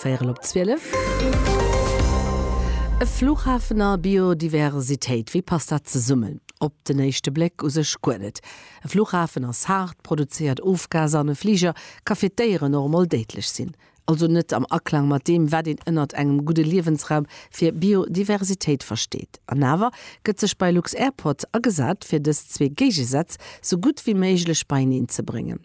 Véierel op zwielef. E Fluchhafen a Biodiversitéit, wéi passt dat zesummen? Op den éischte Bléck u sech guer net. E Fluchhafen ass haart, produzéiert Ofgaser an e Fliger ka fir d'Déieren och emol déidlech sinn. Also net am Aklang mat deem, wat een ënnert engem gudde Liewensraum fir Biodiversitéit versteet. An awer gëtt sech bei lux-Airport agesat, fir dës zwee Géigesätz sou gutt wéi méiglech beieneen ze bréngen.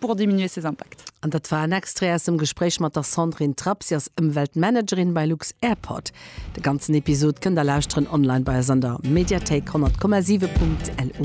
pour diminuer ses impacts. An dat war en Extrait aus dem Gespréich mat der Sandrine Trapp, si ass Ëmweltmanagerin bei lux-Airport. De ganzen Episod kënnt der lauschteren online bei eis an der Mediathéik 100,7.lu.